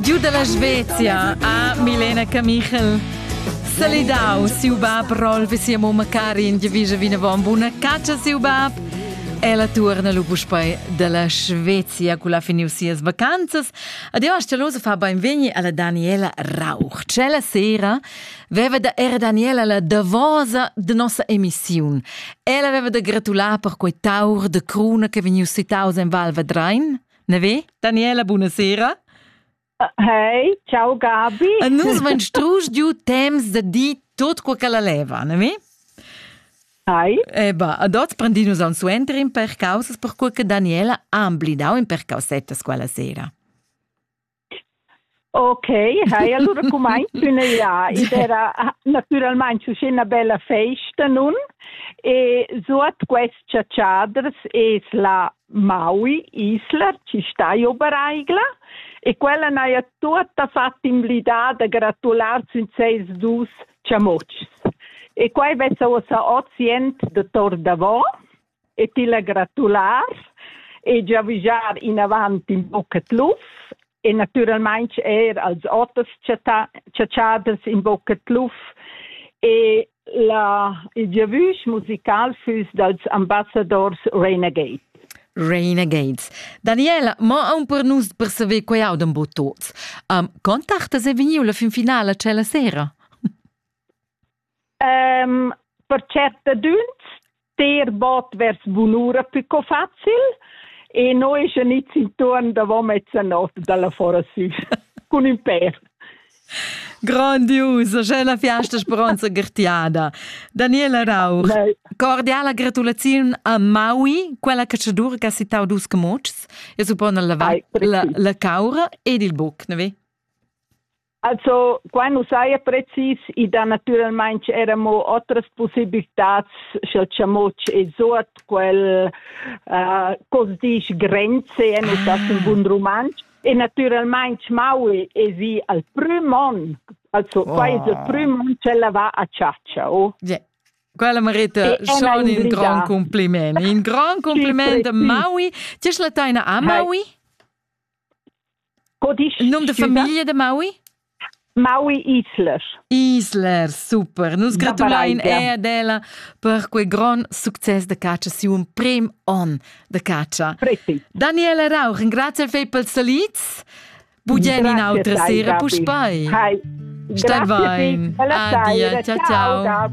Giu dalla Svezia a Milena Camichel. Salidau siu bab Rolf e sia mumma Karin giavischa vinavon buna catscha siu bab. Ella tuorna lu puspei dalla Svezia cu la finiu sias vacanzas. Ad io Stelosa fa beinvegni alla Daniela Rauch. Cella sera veva da era Daniela la davosa de nossa emissiun. Ella veva da gratular per quei taur de cruna che vegniu sitaus en Val Vadrein. Na ve, Daniela, buonasera. Hey, ciao Gabi. E nus van strus giu temps da di tot quel che la leva, ne vi? Hai. Eh ba, ad oz prendinus aun suenter in per causas per quel che Daniela ha amblidau in per causettas quella sera. Ok, hai allura cumaint üna ja. Id era natüralmaing uschè üna bella festa nun e suot quest chatschaders es la Maui Isla chi sta io Baraigla e quella n'haja tuotta fat invlidà da gratular sün seis dus chamutschs. E quai vessa uossa hoz jent da tor davo e ti la gratular e giavischar inavant in bucet lufs e naturalmein er als oters chatschaders in bucet luf e la, il giavüsch musical füss dals ambassadors Renegade. Renegades. Daniela, mo aun per nus per saver quei audan bo tots. Um, contartas è vegniu la fin finala cella sera? um, per certadüns ter bot vers bunura più co facil e noi genits intorn davant mezzanot dalla fora sü cun ün per. Grandiusa, già la fiasta speronza gertiada. Daniela Rauch, Nei. cordiala gratulaziun a Maui, quella cacciadura che ha citau dus camuccs, e suppone la, la, la caura ed il buc, ne vi? Also, qua nu saja precis, i dà natüralmaing era mo otras possibilitats, sch'el chamoc es suot quel, uh, co's disch grenze, e nu tas in bun rumantsch. E natüralmaing Maui es i al prüm on. Also, qua oh. es il prüm on ch'ella va a chatscha, oh. Yeah. Quella merita schon in gran compliment. In gran compliment a Maui. Ti es la taina a Maui? Co dici? Il nom de famiglia de Maui? Maui Islers. Islers, super. Nus gratulain er ad ella per quei gron success de catscha siu prim on de catscha. Preti. Daniela Rauch, grazie al fei pels salits. Bugen in autra sera, puspai. Hai. Stai vain. Adia, ciao ciao.